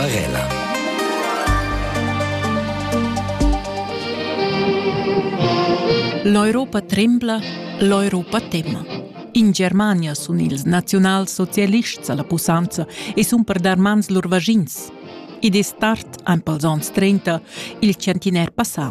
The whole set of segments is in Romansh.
Barella. L'Europa trembla, l'Europa tema. In Germania sun ils naziunalsocialists alla pussanza e sun per dar mans lur vagins. Id es tard, ein pels ons 30, il centiner passà,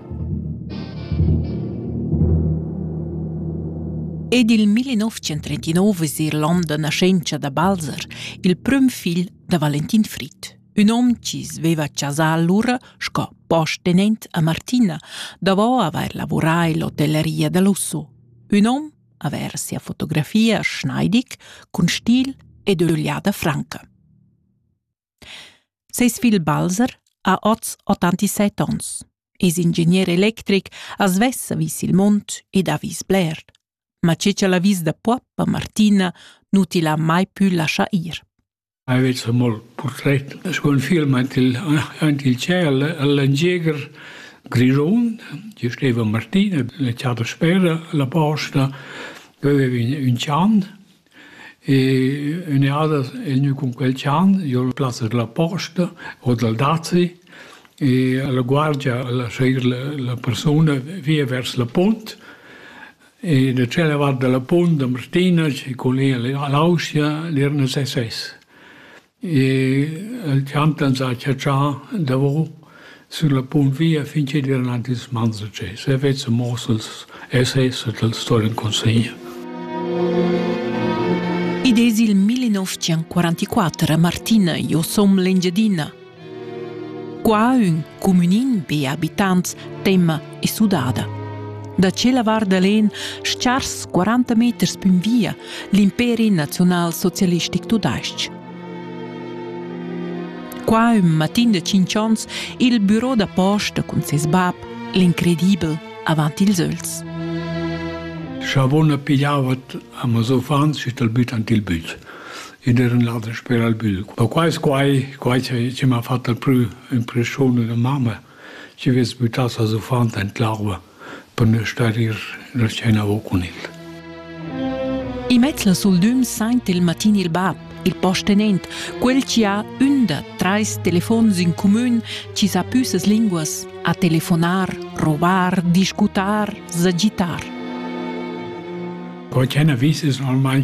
Ed il 1939 es eir l'on da naschentscha da Balzer, il prüm figl da Valentin Frit. Ün hom chi's veva chasà lura sco postenent a Martina, davo avair lavurà in l'hotelleria da Lusso. Ün hom avair sia fotografia Schneidig cun stil ed ögliada franca. Ses figl Balzer ha oz 87 onns, es ingegner electric, as vessa vis il mund ed ha vis bler. Ma che ch'el ha vis da Puappa, Martina, nu tila mai pü lascha ir. Aveva molt portret sco film aint il, aint il ciel all'Angieger Grischun, ci steva Martina, la chata spera, la posta, aveva un, un chan E ün'eada es gnü cun quel chan, jo l'ho plas la posta o dal dazi e la guardia al a seir la persuna via vers la punt e da tschella vart da la punt da Martina cun l'ia l'Auscha l'irna ses ses. El champ ans ha chatschà davo sün la punt via fin chi'd vain aint ils mans da tschè. Se vezza muoss els essays e tals stourn consegnir. Id es il 1944 a Martina, io som l'Engiadina. Qua ün cumünin, be abitants, temma e sudada. Da tschella vart da l'en schars 40 meters pün via l'imperi naziunalsocialistic tudais-ch. Qua ün matin de 5 ons il büro da posta cun ses bab, l'incredibel, avant ils öls. Savona pigliavat a mes uffants et al büt ant il büt. Ed eran ladas per al büt. Ma quai es quai, quai che m'ha fatto il prü impressione da mamma. Tgi vess buttà ses uffant en l'arva per ne star ir la scena o cun el. I mezz la sul düm saint il matin il bab, il postenent, quel chi ha ün da trais telefons in cumün chi sa pü ses linguas, a telefonar, rovar, discutar, sagitar. Quai ch'ena vis es normalmain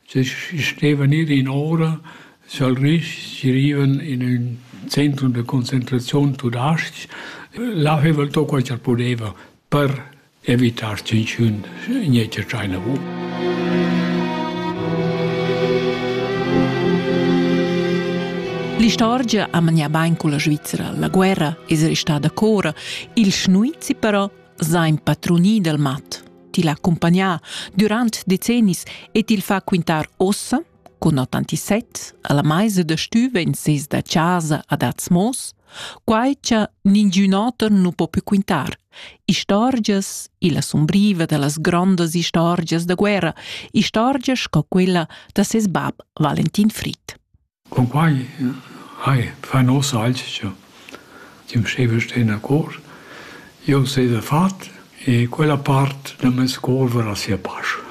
Se stevan ir in ora sa'l Risch, si rivan in ün centrum da concentraziun tudais-ch, là haveva el to quai cha'l pudeva per evitar tschinchün gnetsch a tschaina vu. L'istorgia ha manià bain culla Svizra. La guerra es restada cora, il schnuizi però s'ha impadrunì dal mat. til accompagnar durant decennis e til fa quintar ossa, con 87, alla meisa da stüva in ses da casa ad Atzmos, quai cha ningiun oter nu po più quintar. Istorgias, illa sumbriva da las grondas istorgias da guerra, istorgias sco quella da ses bab Valentin Fried. Cunquai hai fa nossa alchia chi'm staiva sten a cor. Jeu staiva fat e quella part da meis cor varà sia pasch.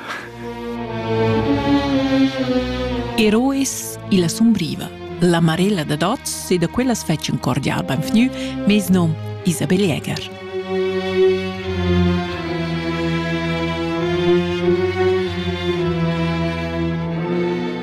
Eroes illa sumbriva. La Marella dad oz e da quellas fetsch ün cordial benvgnü meis nom Isabel Jäger.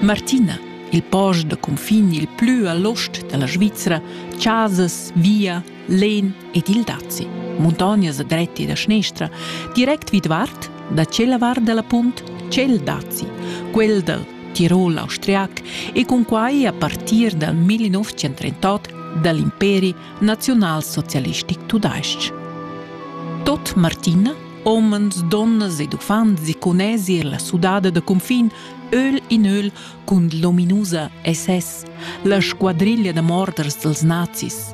Martina il post da cunfin il plü a l'ost da la Svizra, chasas, via, len ed il dazi. Muntognas dretti da schnestra, direct vidvart da tschella vart da la punt tschel dazi, quel da Tirol austriac e con quai a partir dal 1938 dall'imperi naziunalsocialistic tudais-ch. Tot Martina, omens, donnas ed uffants si conesi la sudada da confin, öl in öl, cun l'ominusa SS, la squadriglia da morders dels nazis.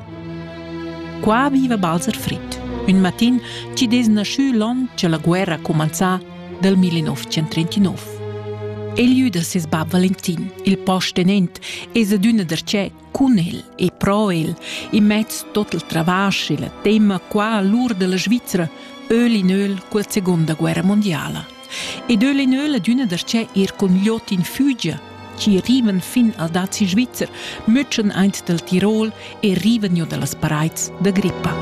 Qua viva Balzer Fritt, un matin ci des naschü l'on che la guerra comenzà del 1939. El iü da ses bab Valentin, il postenent, es adüna darcheu cun el e pro el, in mez tot il travasch e la tema qua l'ur della Svizzera, öl in öl col seconda guerra mondiala. Ed öl in öl adüna da che ir cun gliot in Fügia, ci riven fin al dazi Svizzer, mütschen eint del Tirol e riven jo dallas pareids da grippa.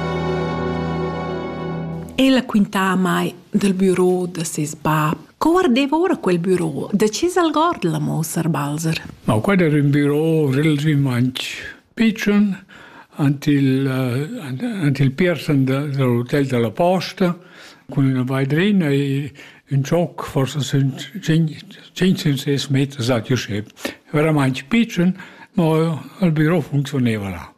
Ella quintà mai del büro da ses bab Co guardeva ora quel büro? Da chi s'algord la mossar Balzer? No, quai era un büro relativament pitschen ant il, uh, ant il piersen de, de l'hotel de la Posta cun üna veidrina e un schoc, forse sind 500 meter, sagt José. Veramente pitschen, ma il büro funzioneva là.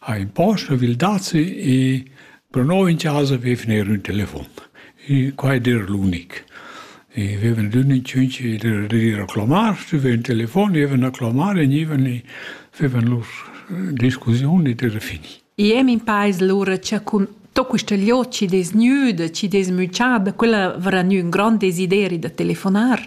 ha imposto vil dazi e pro noi in casa vevner ün telefon. E qua ed era l'unic. E vevan d'ün in cinc dir a clamar, stuven telefon, evan a clamar e nivan e vevan lur discussioni de fini. Iem in paes lura c'è cun to questa lio ci desnüda, ci desmüchada, quella verrà gnü un grand desideri da telefonar.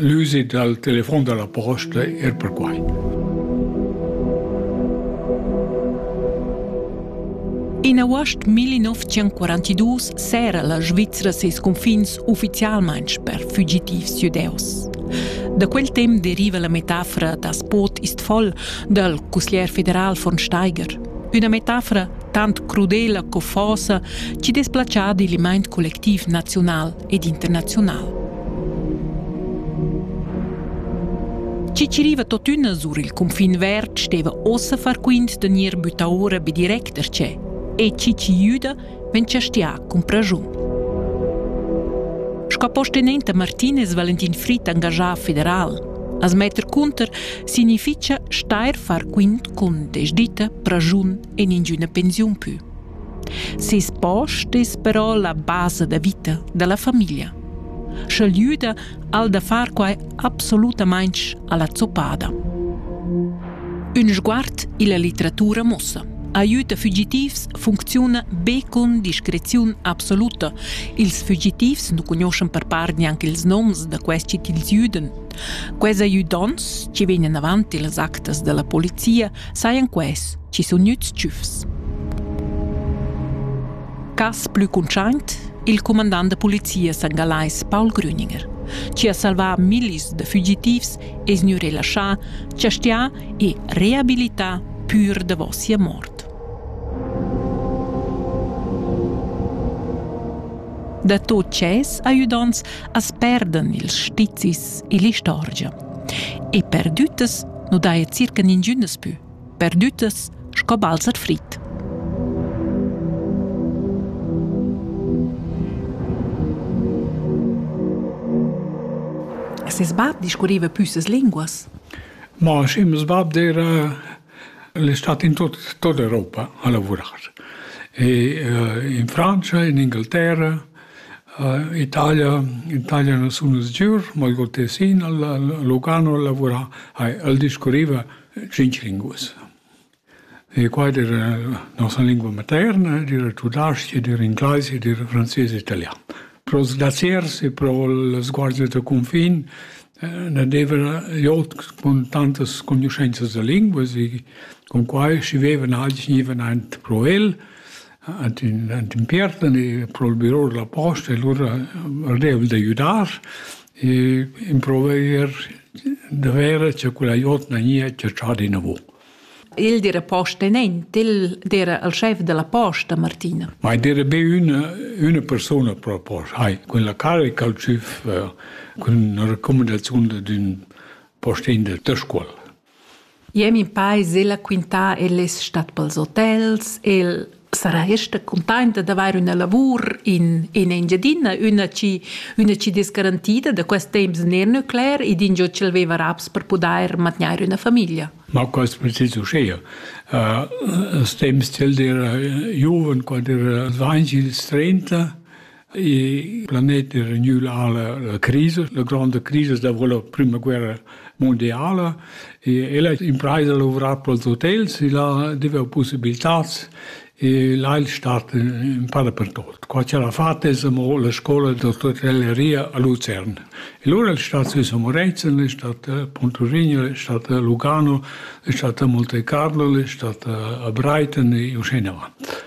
L'usit dal telefon da la posta er perquai. In august 1942 s'era la Svizra ses confins uffizialmain per fugitivs judeus. Da quel temp deriva la metafora da Spot Istfol dal cusglier federal von Steiger. Üna metafora tant crudela co fosa ci desplacia digl mind collectiv naziunal ed internaziunal. Ciciriva totüna sur il cunfin verd steva ossa far quint da gnir bütta ora be direct da che e Ciciriuda ven chastià cun praschun. Sco postenenta Martinez Valentin Fritt engajà federal As metter cunter significha steir far quint cun desditta, praschun e ningüna pensiun pü. Seis post es però la basa da vita da la famiglia. Sch'el güda al da far quai absolutamaing alla zoppada. Ün sguard illa litteratura muossa. Aiüta fugitivs funcziuna be cun discreziun absoluta. Ils fugitivs nu cugnuoschan per part gnanc ils noms da questi til güdan Quels ajudonts chi vegnan avant illas actas da la polizia sajan quels chi sun gnüts tschüfs. Cas plü cuntschaint, il cumandant da polizia sangalais Paul Grüninger, chi ha salvà millis da fugitivs es gnü relaschà, chastià e reabilità pür davo sia mort. Da tot ches ajudants as perdan ils stizis e l'istorgia. E perdüttas nu daja circa ningün daspö. Perdüttas sco balzer frit. Ses bab discurriva püssas linguas? Ma schi, meus bab era el è stato in tut, tutta Europa a lavorar. E, uh, in Francia, in Inghilterra, Italia Italia na sun nus giur, ma il Gol Tessin, Lugano al lavurà, hai el discurriva tschinch linguas. E qua ed era nossa lingua materna, ed era tudasch, ed era ingleis, ed era frances e italian. Pros daziers e pro las guardias da cunfin na deva jot cun tantas cognuschenzas da linguas e cun quai schi vevan agli gnivan aint pro el ad ün ent impiertan e prohibirò la posta e lura vardaiva d'aiüdar e improvaier da verer cha quella jotna gnia chatschada inavo. Il dire posta nent, il dire il schef della posta, Martina. Ma dire be üna, üna persuna pro posta. Hai, con la carica al CIF, con una raccomandazione d'ün postin del Töscuol. Jeu min peis ella quintar el es stat pels hotels, el sarà ester cuntainta d'avair üna lavur in in Engiadina, üna chi üna chi dess garantida da quest temps ner nuclear ed ingio ch'el veva raps per pudair mantgnair üna famiglia. Ma quaist precis uschea. Als temps ch'el era giuven, quand era dvainch ils trenta, Il planet è regnü a la crisa, la gronda crisa dopo la prima guerra mondiala e el ha impraisa lavurar pels hotels e là deva possibiltats e là il stat in pa dapertut. Qua c'era fat es amo la scola d'otelleria a Luzern. E lura il stat Swiss Moretzen, è stat Pontorigno, è stat Lugano, è stat Monte Carlo, è stat a Brighton e uscì in avanti.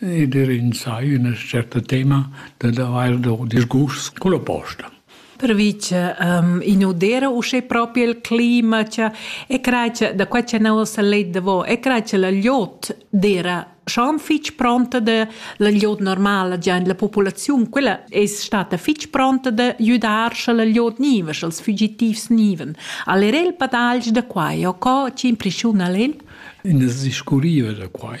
Ed er insai üna certa tema dad avair do disgust culla posta. Pervi cha i nu d'eira uschè propi il clima cha e crai cha da quai cha nouva s'ha let davo e crai cha la gliot d'eira schon fich pronta da la gliot normala già in la populaziun. Quella es stata fich pronta da güdar scha la gliot gniva, scha'ls fügitivs gnivan. Al era il padagl da quai o co chi impreschiuna al el? Ins discurriva da quai.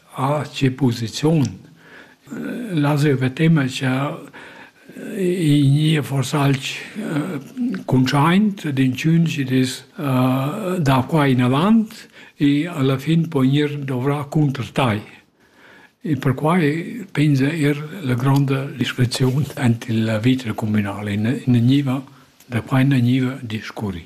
Ah, tge posiziun! Las jeu vetemma cha i gnìa forsa alch cuntschaint d'inchüns chi'd es da qua inavant e alla fin po gnir dovrà cunter tai. E perquai pensa eir la gronda discreziun ant il vita cumünal e ne gniva da quai ne gniva discurri.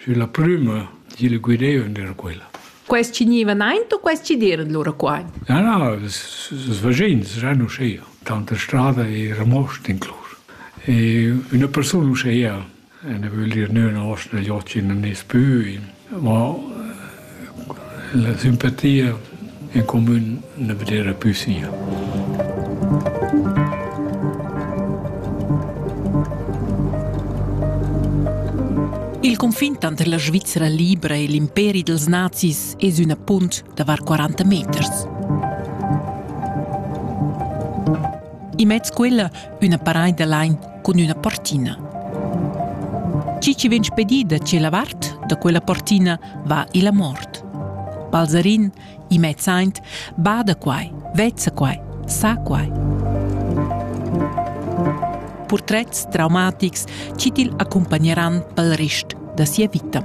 Sü la prüma di il guidaivan era quella. Quels chi gnivan aint u quels chi d'eiran lura qua? Na, na, ils vaschins eran uschea. Tanta strada era most inclus. E üna persun uschea, ella vögl dir nö üna osta da jot chi nun es pü, ma La simpatia en comün na vedera pü sia. Il confin tanter la Svizra libra e l'imperi dels nazis es üna punt da var 40 meters. Immez quella üna paraida lain cun üna portina. Chi chi vegn spedì da tschella vart da quella portina va illa mort. Balzarin, i mezz aint, bada quai, vezza quai, sa quai. Purtrets traumatics chi til accompagneran pel rest da sia vita.